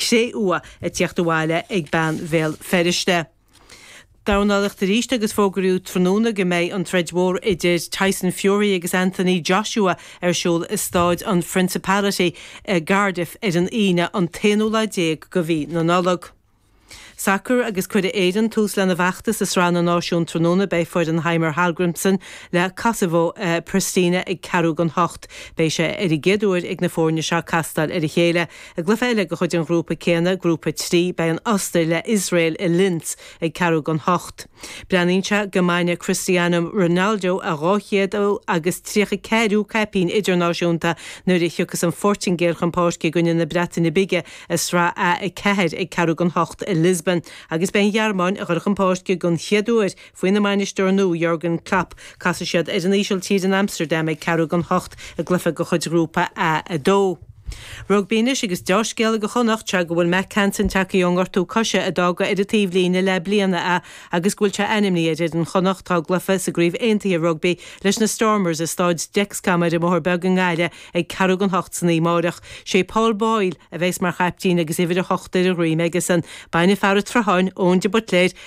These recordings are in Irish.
cré-umha ag tíocht abhaile ag bean Bhéal Feirste. Dornálaíocht aríst agus fógraíodh tráthnóna go mbeidh an troid mhór idir Tyson Fury agus Anthony Joshua ar siúl i Staid an Phrincipality i gCardiff ar an Aoine an t-aonú lá déag go mhí na Nollag. Sacar agus cuirfidh Éirinn tús lena bhfeachtas i Sraith na Náisiún tráthnóna beidh foireann Heimir Hallgrimsson le Kosovo i Pristina ag ceathrú gan hocht. Beidh sé ar an gcéad uair ag na foirne seo castáil ar a chéile. I gcluiche eile de chuid an ghrúpa céanna, Grúpa 3, beidh an Ostair le Iosrael i Linz ag ceathrú gan hocht. Breathnaíonn sé go mbainfidh Cristiano Ronaldo a dhá chéad agus tríocha ceathrú caipín idirnáisiúnta nuair a thiocfas an Phortaingéil chun páirce i gcoinne na Breataine Bige i Sraith A4 ag ceathrú gan hocht i Lisbon agus beidh an Ghearmáin a dhul chun páirce den chéad uair Faoina mbainisteoir nua, Jurgen Klopp, casfaidh siad ar an Ísiltír in Amsterdam ag ceathrú gan hocht i gcluiche de chuid ghrúpa A2. Rugbaí anois agus deá-scéala go Chonnachta go bhfuil Mack Hansen tagthaí ón ngortú coise a d'fhága ar an taobhlíne le bliain é agus go bhfuil sé ainmní ar fhoireann Chonnacht dá gcluiche sa gCraobh Aontaithe Rugbaí leis na Stormers i Staid Dexcom ar an mBóthar Beag i nGaillimh ag ceathrú gan hocht san oíche amáireach. Sé Paul Boyle a bheas mar chaiptín agus uimhir a hocht ar a dhroim aigesean. Beidh fear a' tSrutháin, Eoin de Buitléar,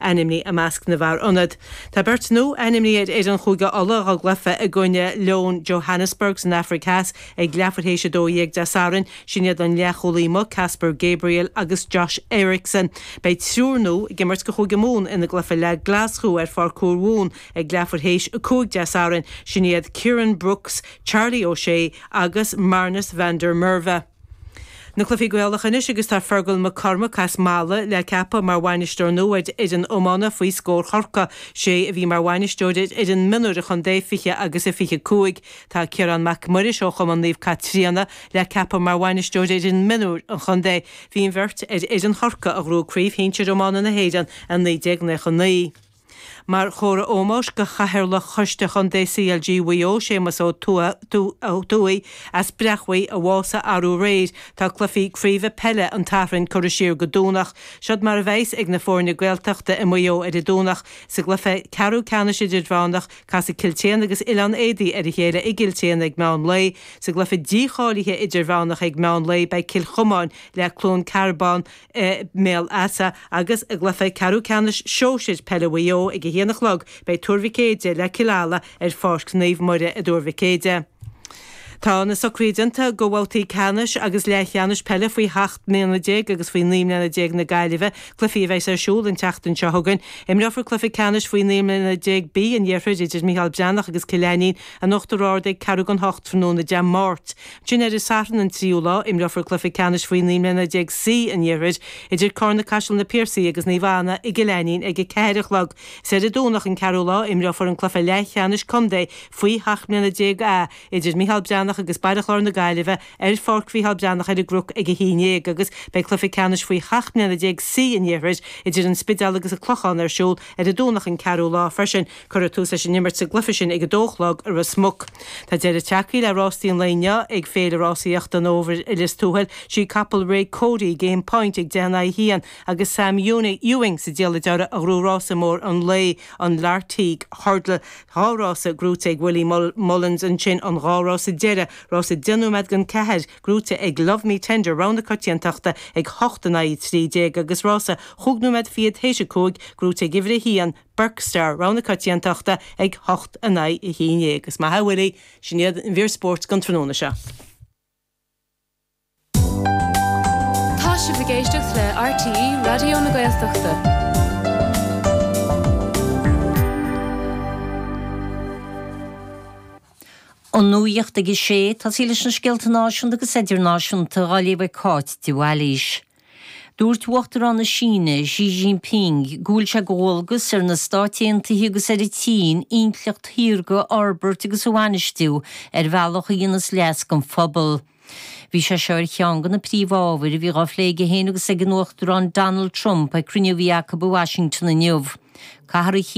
ainmní i measc na bhfear ionaid. Tá beirt nua ainmní ar fhoireann Chúige Uladh dá gcluiche i gcoinne Leoin Johannesburg san Afraic Theas ag leathuair théis 12 Dé Sathairn, sin iad an leathchúlaí amuigh Caspar Gabriel agus Josh Ericson. Beidh triúr nua ag imirt do Chúige Mumhan ina gcluiche le Glaschú ar Pháirc Thúr Mhumhan ag leathuair théis 5 Dé Sathairn, sin iad Kieran Brookes, Charlie O'Shea agus Marnus van der Merwe. Na Cluichí Gaelacha anois agus tá Fergal Mac Cormaic as Mala le ceapadh mar bhainisteoir nua ar fhoireann iomána faoi scór Chorca. Sé a bhí mar bhainisteoir ar fhoireann mionúir an chontae 20 agus a 25. Tá Ciarán Mac Muiris ó chumann Naomh Caitríona le ceapadh mar bhainisteoir ar fhoireann mionúir an chontae. Bhí an bheirt ar fhoireann Chorca a ghnóthaigh craobh shinsir iomána na hÉireann i 1999. Mar chomhartha ómóis go Chathaoirleach Choiste Chontae CLG Mhaigh Eo, Séamus Ó Tuathaigh as Breachmhaigh, a bhásaigh arú aréir, tá cluichí craoibhe peile an tSathairn curtha siar go Domhnach. Siod mar a bheidh's ag na foirne Gaeltachta i Maigh Eo ar an Domhnach. Sa gcluiche ceathrú ceannais idirmheánach, casfaidh Cill tSéadhna agus Oileán Éadaí ar a chéile i gCill tSéadhna ag meán lae. Sa gcluiche dícháilithe idirmheánach ag meán lae, beidh Cill Chomáin le Cluain Cearbán i mBéal Easa agus i gcluiche ceathrú ceannais Shóisir Peile Mhaigh Eo ag 1 a chlog beidh Tuar Mhic Éadaigh le Cill Ala ar Pháirc Naomh Muire i dTuar Mhic Éadaigh. Tá na socruithe déanta go bhabhtaí ceannais agus leathcheannais peile faoi sheacht mbliana déag agus faoi naoi mbliana déag na Gaillimhe, cluichí a bheidhs ar siúl an tseachtain seo chugainn. Imreofar cluiche ceannais faoi naoi mbliana déag B an Iarthair idir Micheál Breathnach agus Cill Ainnín in Uachtar Ard ag ceathrú gan hocht tráthnóna Dé Máirt. Sin ar an Satharn, an tríú lá, imreofar cluiche ceannais faoi naoi mbliana déag C an Iarthair idir Carna-Caiseal na Piarsaigh agus Naomh Anna i gCill Ainnín ag a ceathair a chlog. Ar an Domhnach, an ceathrú lá, imreofar an cluiche leathcheannais contae faoi sheacht mbliana déag A idir Micheál Breathnach agus Baile Chláir na Gaillimhe ar Pháirc Mhicheál Breathnach ar an gCnoc ag a haon dhéag agus beidh cluiche ceannais faoi sheacht mbliana déag C an Iarthair idir an Spidéal agus an Clochán ar siúl ar an Domhnach, an ceathrú lá, freisin. Cuireadh tús leis an imirt sa gcluiche sin ag a dó a chlog i Ros Muc. Tá deireadh tagthaí le rásaí an lae inniu ag Féile Rásaíochta an Fhómhair i Lios Tuathail Ba í capall Ray Cody, Game Point ag deich in aghaidh a haon agus Sam Ewing sa diallait uirthi a ghnóthaigh rása mór an lae, an Lartigue Hurdle. Dhá rása gnóite ag Willie Mullins ansin an dhá rása deireadh, rása deich nóiméad don cheathair, gnóite ag Love Me Tender, Rogha na Coitiantachta ag a hocht in aghaidh a trí déag agus rása chúig nóiméad fichead th'éis a cúig, gnóite ag uimhir a haon, Burke Star, Rogha na Coitiantachta ag a hocht in aghaidh a haon dhéag. Agus mar a bhfuil sé. Sin í an mhír spóirt don tráthnóna seo. Tá sibh ag éisteacht le RTÉ Raidió na Gaeltachta. An nuacht ag a sé, tosaí leis na scéalta náisiúnta agus idirnáisiúnta á léamh ag Cáit de Bhailís. Dúirt Uachtarán na Síne, Xi Jinping, go bhfuil sé de dhualgas ar na Stáit Aontaithe agus ar an tSín intleacht shaorga a fhorbairt agus a bhainistiú ar bhealach a dhéanas leas don phobal. Bhí sé seo ar cheann de na príomhábhair a bhí dhá phlé aige féin agus ag an Uachtarán Donald Trump ag cruinniú a bhí acu i Washington inniu.